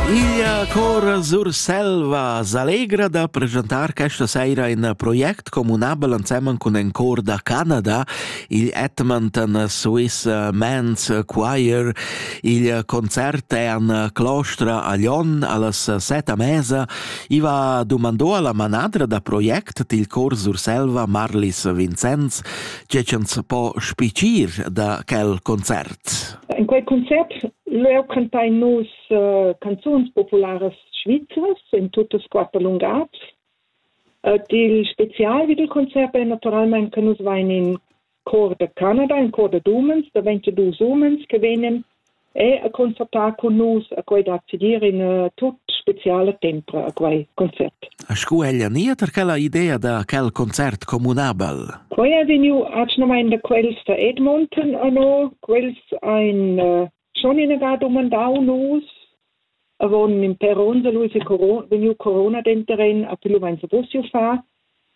Iglia Cora Surselva s'allegra da presentar questa saira in project communabel ensemen cun in cor da Canada, il Edmonton Swiss Men's Choir. Il concert è an Clostra a Lyon allas set a mesa. Iva domandò alla manadra da project til cor Surselva Marlis Vincenz, tge ch'ans po spicir da quel concert. In quei concert leu cantein nus uh, canzuns popularas svizras in tuttas quater lungads. Uh, dil spezial vid il concert è naturalmente che nus vein in cor de Canada, in cor de umens, de 22 umens che venen e a concertar con nus a quei da accedir in uh, tut speciale tempo a quei concert. A scu ella niet er quella idea da quel concert communabel? Quei è veniu acnamain da quels da Edmonton a no, Quels ein uh, schon inagà domandau nus, avon in per ons lui se corona, vegniu corona denteren a più meins possiu fa.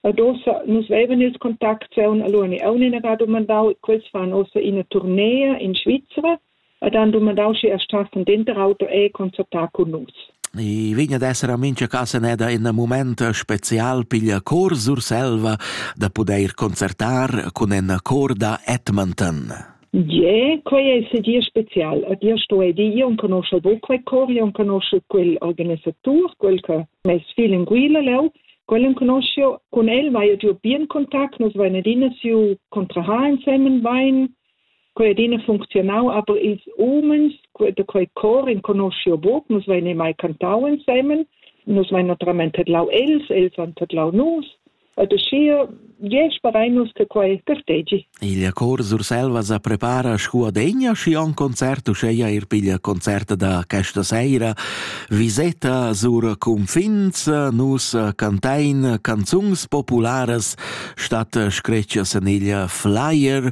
Adossa nus veven ils contacts e un allora auch inagà domandau, quels fan ossa ina tournee in Svizzera, ad han domandau sche er stassen denter auto e concertar con nus. I vegn ad esser a mincha casa neda in mumaint special piglia Chor Surselva da pudair concertar cun in cor da Edmonton. Yeah, quei ei sedia special. Ad io sto edi, io non conosce bo quei cor, io non conosce quel organisatur, quel che m'è fil in guila leu. Quel conoscio, con el vai io bien contact, nos vai adina siu contraha insemen vain. Quei adina funcziunau, aber ils umens da quei cor enconoscio buc, nus vein mai cantau ensemen, nus vein naturalment tedlau els, els han tedlau nus, ed uschia je sperein nus che quei gartegi. Il cor Surselva sa prepara scu adegna schi on concert uscheia ir piglia concert da questa seira viseta sur confins nus cantain canzungs popularas stat screccia seniglia flyer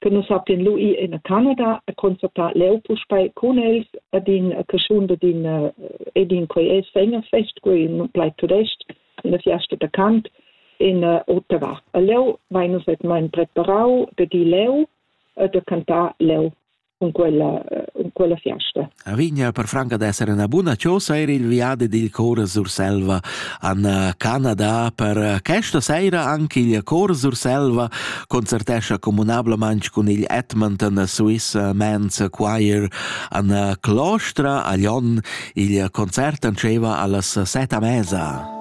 che nus havein lu ir en Canada e concertar leu puspei cun els ad in caschun da din ed in quei es Fest quei in plaid tudest in la fiasta da Kant in uh, Ottawa. A leu vein nus et mein preparau de di leu e de cantar leu con quella, uh, con quella fiasta. Vigna per franca d'esser üna buna chosa eir il viadi dil Chor Surselva an eh, Canada. Per eh, questa seira anche il Chor Surselva concertescha comunablemente con il Edmonton Swiss Men's Choir an eh, Clostra a Lyon. Il concert anceva allas set a mesa.